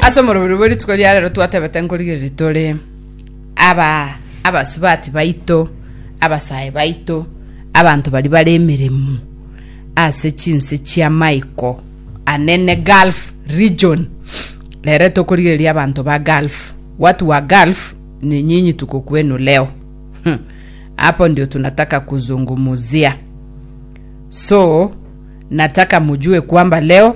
ase omorobiri bwe rituko ria rero twatebete nkorigereria tore aba abasubati baito abasae baito abanto bari bare emeremo ase chinse chia maiko anene gulf region rere tokorigereria abanto ba gulf watu wa gulf ni nyinyi tuko kwenu leo Hmm. hapo ndio tunataka kuzungumuzia so nataka mujue kwamba leo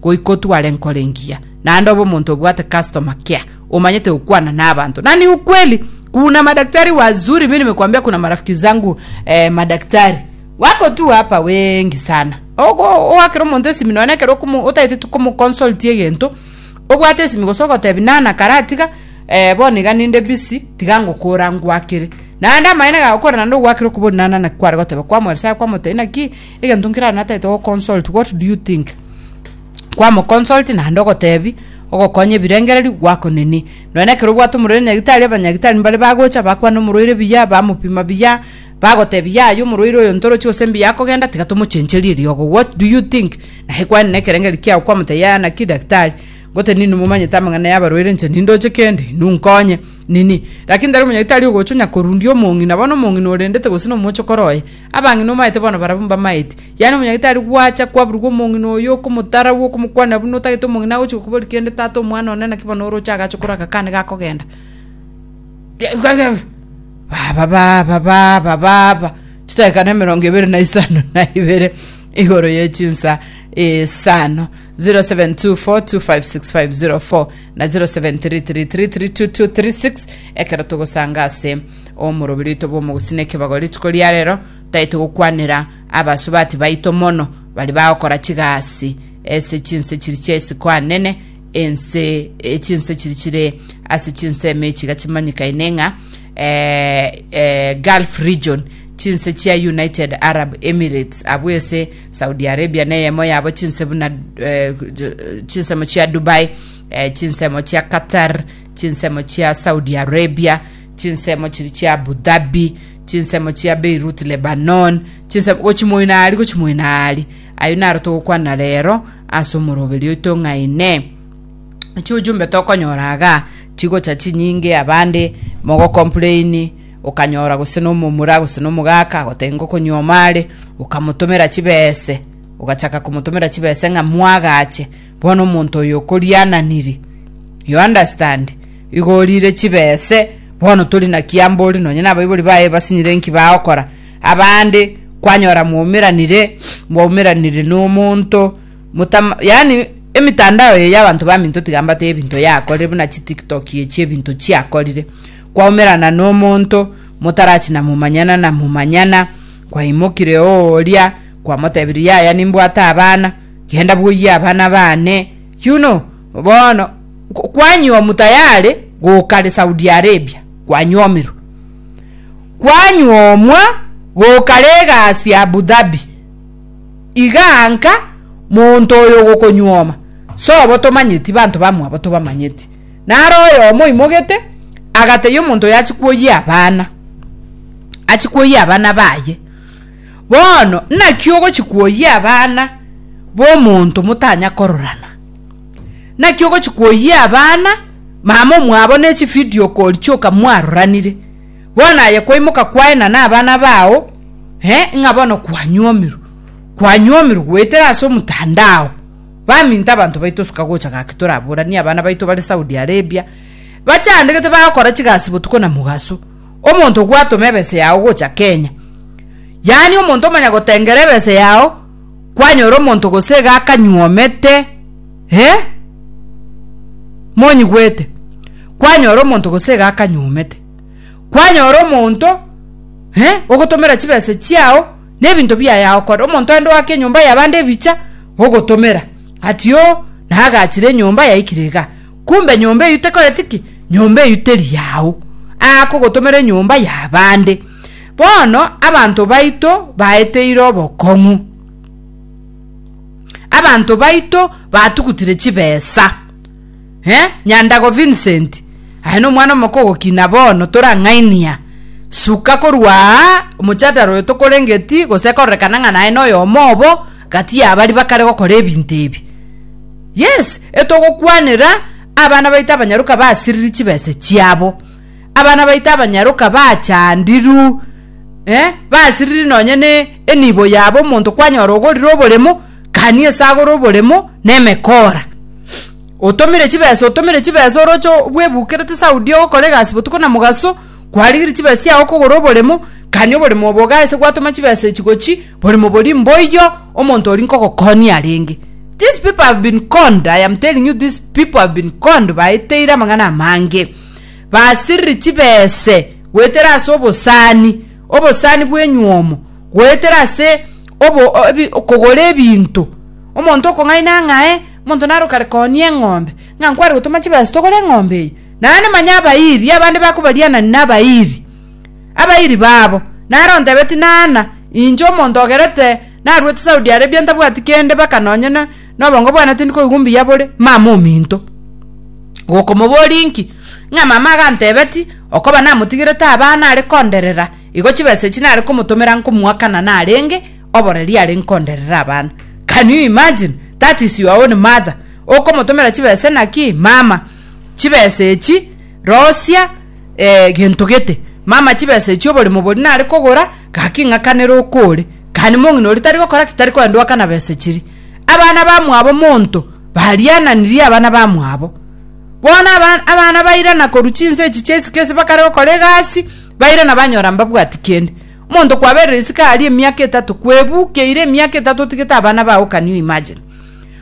Goika otware nkoro engiya, naende obe omonto obwate customer care, omanyete gokwana na abanto. Na ni ukweli, kuna madaktari wazuri, mimi nimekwambia kuna marafiki zangu eh, madaktari wako tu hapa wengi sana. Ogo oakera omonto esimi nonye ekero okomo- otaete tu komoconsultia egento, obwate esimi gose ogotebi nana karatiga eh, bono iga ninde busy, tiga ngokora ngwakere. Naende amaene gaye okore naende ogwakere okobori nana naki kware goteba, kwamoeresara kwamotebia naki Egento nkere natete go consult what do you think kwa mo consult naende ogotebi ogokonya ebirengererio gwako nini nonya na ekero obwate omorwaire nyagitari abanyagitari mbare bagocha bakwane omorwaire buya bamopima buya bagotebi yaya omorwaire oyo ntoroche gose mbuya akogenda tiga tomochencherie riogo what do you think naye kwani na ekerengerio kiago kwamotebia yaya naki daktari ngote nini momanyete amang'ana ya abarwaire inche nindoche kende inwe nkonye nini lakini tari omonyagitari ogocha onya korundia omong'ina bono omong'ina orendete gose nomochokoro oye. Abang'ina omaete bono barabwo mbamaeti. Yaani omonyagitari gwacha kwaburugwa omong'ina oyo okomotaragwa okomokwanera buna otagete omong'ina agochia gokoboria kende tata omwana one naki bono oroche agache korwa agakane gakogenda. Baba baba baba baba chidakika na emerongo ebere na isano na ibere igoro ye chinsa isano 0724256504 na 0733332236 ekero togosanga ase Omorobi rito bw'omogusii nekebago rituko ria rero, taito gokwanera abasubati baito mono baria bagokora chigasi ase chinse chiria chia isiko anene, ense chinse chiria chire ase chinse emechi iga chimanyikaine ng'a eh, eh, Gulf region chinse chia United Arab Emirates abwo ese Saudi Arabia na eyemo yabo chinse buna eh, chinsemo chia Dubai eh, chinsemo chia Qatar chinsemo chia Saudi Arabia chinsemo chiri chia Abu Dhabi, chinsemo chia Beirut Lebanon, chinsemo gochi moino aria gochi moino aria. Ayio naro togokwana rero ase omoroberi oito ng'a Inee, chiujumbe tokonyora iga chigocha chinyinge abande mogocomplaini okanyora gose nomomura gose nomogaka agotebia ng'a okonyuoma are okamotomera chibese ogachaka komotomera chibese ng'a mwagache Bono omonto oyo okoriananiri, you understand, igo orire chibe ese, bono tori naki ambori nonye nabaibori baye basinyire enki bagokora. Abande kwanyora mwaumeranire, mwaumeranire nomonto, motama, yani emitandao eye y'abanto baminto tiga mbateba ebinto yakorire buna chitiktok echi ebinto chiakorire. Kwaumerana nomonto, motarachina momanyana na momanyana, kwaimokire oo oria, kwamotebirie yaya nimbwate abana, Genda bwoyia abana baane, yuno bono kwanyuomu tayare goka re Saudi Arabia, kwanyuomirwe. Kwanyuomwa goka re egasi Abu Dhabi. Iga nka monto oyo ogokonyuoma, sobo tomanyeti banto bamwabo tobamanyeti. Naro oyomo oimogete, agateyia omonto oyo achie kwoyia abana, achie kwoyia abana baye. Bono naki ogochi kwoyia abana b'omonto motanya kororana? Naki ogochi kwoyia abana mama omwabo ne chividio kori chioka mwaroranire? Bono aye kwaimoka kwaena nabana bao eh, ng'a bono kwanyuomirwe, kwanyuomirwe goetera ase omotandao. Baminto abanto baito suka gocha gaki toraboranie abana baito bare Saudi Arabia, bachandegete bagokora chigasi botuko na mogaso. omonto gwatoma ebese yao gocha Kenya, yaani omonto omanya gotengera ebese yao, kwanyora omonto gose iga akanyuomete, eh? Monyigwete? Kwanyora omonto gose iga akanyuomete. Kwanyora omonto, eh, ogotomera chibese chiao, na ebinto biaye agokora. Omonto aende oake enyomba yabande ebicha, ogotomera. Ati o, nagachire enyomba yaikire iga. Kumbe nyomba eyio tekoreti ki? Nyomba eyio teri yao, akogotomera enyomba y'abande. Bono abanto baito baeteire obokong'u, abanto baito batugutire chibesa. Eh, Nyandago Vincent, aye nomwana omoko ogokina bono, torang'ainia. Suka korwa aa, omochandara oyo tokorengeti, gose ekororekana ng'a naye noyomo obo gati y'abari bakare gokora ebinto ebi. Yes, etogokwanera abana baito abanyaroka basiriri chibesa chiabo, abana baito abanyaroka bachandiru, eh, basiriri nonye ne enibo yabo omonto kwanyora ogorire oboremo, kani esagore oboremo nemekora. Otomire chibesa otomire chibesa oroche bwebukerete Saudi ogokora egasi botuko na mogaso, Kwarigirie chibesa chiago kogora oboremo, kanya oboremo obo ogaise gwatoma chibesa echi gochi, boremo boria mboiyo omonto oria nkogokonia arenge. These people have been conned, I am telling you these people have been conned, baeteire amang'ana amange. Basiririe chibese goetera ase obosani, obosani bw'enyuomo, goetera ase obo, o- ebi, kogora ebinto. Omonto okong'aina ng'ae, omonto naro kare konia eng'ombe, ng'a nkware gotoma chibesa togore eng'ombe eye. Naende manya abairi abande bakobarianania nabairi abairi babo. Nare ontebetie naana, inche omonto ogerete naruete Saudi Arabia ntabwati kende baka nonye nobongo bwane tindi koigwa mbuya bore, mama ominto. Gokomoboria inki? Ng'a mama agantebetie, okoba namotigerete abana are konderera, igo chibesa echi nare komotomera nkomoakana narenge oboreri are nkonderere abana. Can you imagine? That is your own mother okomotomera chibesa naki? Mama. chibesa echi rosia eh, gento gete mama chibesa echi oborimo bori nare kogora gaki ng'akanere okore kani mong'ina ori tari gokora ki tari koenda oakana besa chiri abana bamwabo monto bariananirie abana bamwabo bono aba- abana bairana korwa chinse echi chia isiko ase bakare gokora egasi bairana banyora mbabwati kende omonto kwaberire isiko aria emiaka etato kwebukeire emiaka etato otigete abana bago can you imagine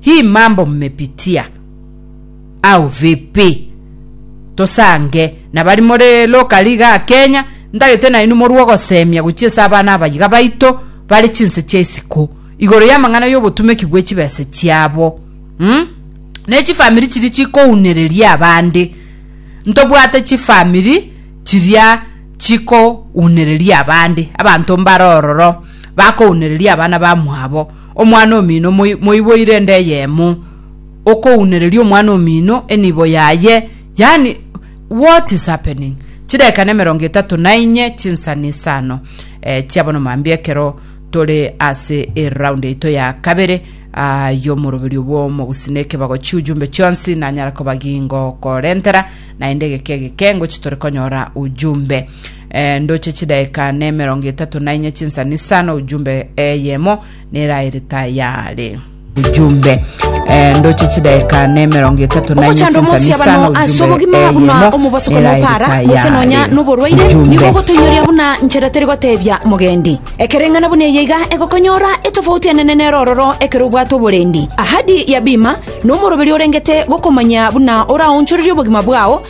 Hii mambo mmepitia au vipi? Tosange nabari more lokali igaa Kenya, ntagete nainwe morue ogosemia gochia ase abana abayiga baito bare chinse chia isiko igoro y'amang'ana y'obotumeki bwe chibese chiabo, um, ne chifamiri chiria chikounereria abande. Ntobwate chifamiri chiria chikounereria abande, abanto mbare ororo bakounereria abana bamwabo. Omwana omino moiboire ende eyemo, okounereria omwana omino enibo yaye, yaani what is happening? Chidakika na emerongo etato na inye chinsa na isano eh, chia bono mambia ekero tore ase eround yaito ya kabere ah, y'omoroberio bw'omogusi na ekebago chi'ujumbe chionsi nanyara koba gingokorentera naende egeke egeke ngochi tore konyora ujumbe E, ndoche chidaeka ne emerongo etato na inye chinsani sana ujumbe eyemo neraerete ayaare ujumbe Eh, ndoche chidaeka ne emerongo etato na inye ogochanda omosia chinsani sana bano ase ujumbe obogima buna eyemo omobaso kono opara neraerete gose nonya ayaare noborwaire nigo ujumbe ogotoinyoria buna nchera teri gotebia mogendi ekereng'ana buna eye iga egokonyora etofauti enene nero ororo ekero obwate oborendi ahadi ya bima nomoroberi orengete gokomanya buna oraonchorerie obogima bwao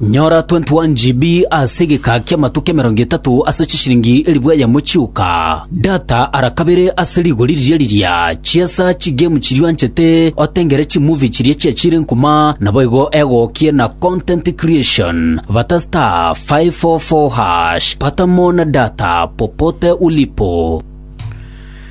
Nyora 21 GB ase egeka ki'amatuko emerongo etato ase chisiringi elifu eyemo chioka. Data ara kabere ase rigori riria riria. Chiesa chigame chiria oanchete, otengere chimovie chiria chiachire nkuma, naboigo egokie na content creation. Bata star 544 hash. Pata more na data popote ulipo.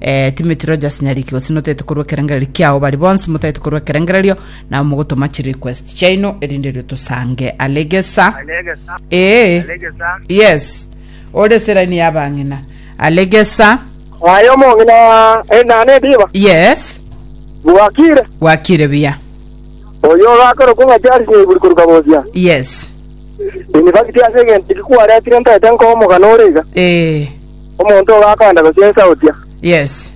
Eh, Timothy Rogers Nyariki gose notaete korwa ekerengererio kiao bari bonsi motaete korwa ekerengererio nabo mogotoma chi request chaino erinde rio tosange alegesa Alegesa. ee Alegesa. yes ore seraini ya bang'ina alegesa Aye omong'ina enane ndiba. yes Bwakire. gwakire buya Oyo orakorokwa ng'a Charles Nyaiburi korwa Kabosia. yes University ase egento ekikwaretire ntaete nkoa omogano ore iga. ee Omonto ogo akaenda gochia inse agotia, Yes.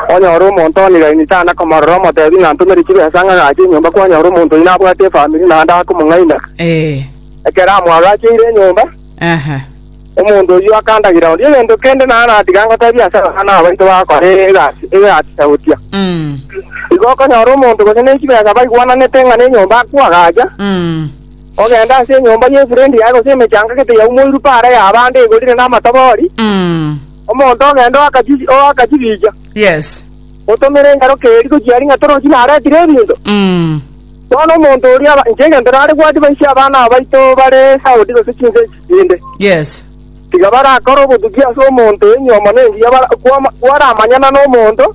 Onyore omonto one iraini tana komorora omotebi ng'a ntomere chibesa ng'a agache enyomba kwanyora omonto oyio nabwate efamiri naende akomong'aina. Eh. Ekero amwagacheire enyomba, Aha. omonto oyio akandagira onde egento kende naye natiga ngotebia ase abana abaito bagokora egasi egasi agotia, Mm. Igo okonyora omonto gose ne chibesa baigwananete ng'a nenyomba akwo agacha, Mm. Ogenda ase enyomba y'efrendi yaye, gose emechanga gete yaumoirwe paara y'abande egorire namatobori, omonto ogende oakachi- oakachibicha, Yes. otomere enyaroka eria gochia aria ng'a torochi naretire ebinto. Bono omonto oria aba- inche egento nare gwatie baiche abana abaito bare Saudi gose chinse echi chinde, Yes. tiga barakore obotuki ase omonto enyiomana engiya bara- kwama- kwaramanyana nomonto,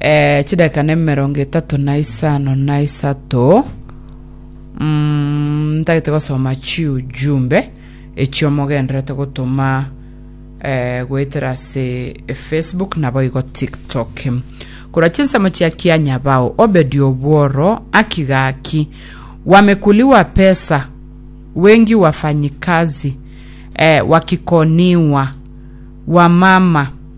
eh, chidakika nemerongo etato na isano na isato mm, ntagete gosoma chiujumbe echiomogenderete gotoma eh, goetera ase facebook nabo igo tiktok kora chinsemo chia kianyabao obedi obworo aki gaki wamekuli wa pesa wengi wafanyikazi eh, wakikoniwa wa mama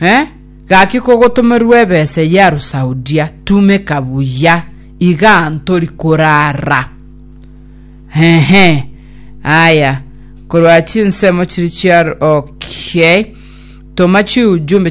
Eh, gaki kogotomerwe ebesa eyio Arusaudia, tumeka buya, iga ntori korara. Ehe, aya, korwa chinsemo chiri chia okay. Toma chiujumbe